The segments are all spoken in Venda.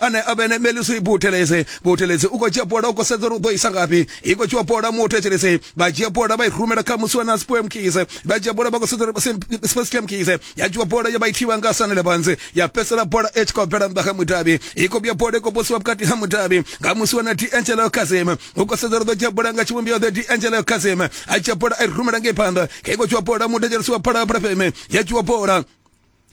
ane a vhe ne melisi butelese butelese u khou dzhia bola u khou sedza uri u ḓo isa ngafhi i khou tshiwa bola muthu etshelese vha dzhia bola vha i rumela kha musi wa na spoem kise vha dzhia bola vha khou sedza uri spesiam kise ya dzhiwa bola ya vha i thivha nga sanele banze ya pesela bola e tshi khou bvela nnḓa kha mudavhi i khou vhuya bola i khou posiwa vhukati ha mudavhi nga musi wa na di angelo kazem u khou sedza uri ḓo dzhia bola nga tshivhumbeo ḓe di angelo kazem a dzhia bola a i rumela ngei phanḓa kha i khou tshiwa bola muthu etshelese wa phala phala feme ya dzhiwa bola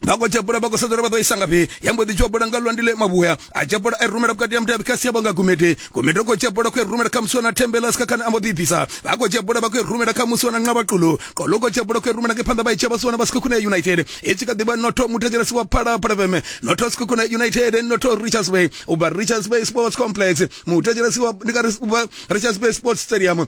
vha khou tshepula vha khou sedzela vha ḓo isa ngafhi ya mbo ḓi tshopula nga lwandi ḽe mavhuya a tshepula a i rumela vhukati ya mutevhi kha sia vhanga gumede gumede khou tshepula khou i rumela kha musiwana thembela sika khane a mbo ḓi bvisa vha khou tshepula vha khou i rumela kha musiwana nqa vhaqulo qolo khou tshepula khou i rumela ke phanḓa vha i tsheba siwana vha sika khune ya united i tshi kha ḓi vha notho muthetshelesi wa phala phala veme notho sika khune united notho richards bay u bva richards bay sports complex muthetshelesi wa ndi ka ri richards bay sports stadium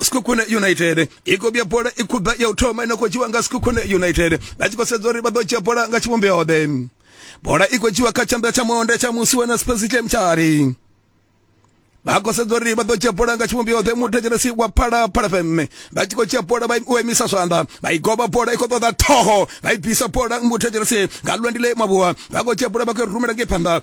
Sekhukhune United i khou vhuya bola i khubva ya u thoma ine khou dzhiwa nga Sekhukhune United vha tshi khou sedza uri vha ḓo dzhia bola nga tshivhumbeo ḓe bola i khou dzhiwa kha tshanḓa tsha monde tsha musi wena Spencer Chemchari vha khou sedza uri vha ḓo dzhia bola nga tshivhumbeo ḓe muthetshelesi wa phala phala fm vha tshi khou dzhia bola vha u emisa zwanḓa vha i goba bola i khou ṱoḓa ṱhoho vha i bvisa bola muthetshelesi nga lwendile mavhuwa vha khou dzhia bola vha khou rumela ngei phanḓa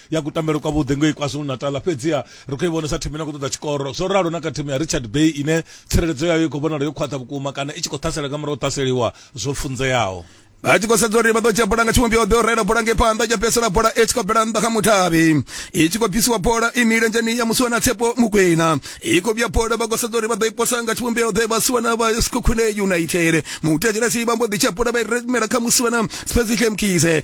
ya kutambele kwa vhuḓi ngei kwazulu natal fhedziha ri khou i vhonesa thimu ine khou ṱoḓa tshikoro zwo ralo na kha thimu ya richard bay ine tsireledzo yayo i khou vhonala yo khwaṱha vhukuma kana i tshi khou ṱhasela nga murahu ṱhaseliwa zwo funzeaho vha tshi khou sedza uri vha ḓo dzhia bola nga tshivhumbeo ḓo rela bola ngei phanḓa ya fhedzisela bola i tshi khou bvela nnḓa kha muthavhi i tshi khou bvisiwa bola i milenzheni ya musiwana tshepo mukwena i khou vhuya bola vha khou sedza uri vha ḓo i posa nga tshivhumbeo ḓe vhasiwana vha skhukhune united mutetshelesi vha mbo ḓi tshia bola vha i remela kha musiwana special mkise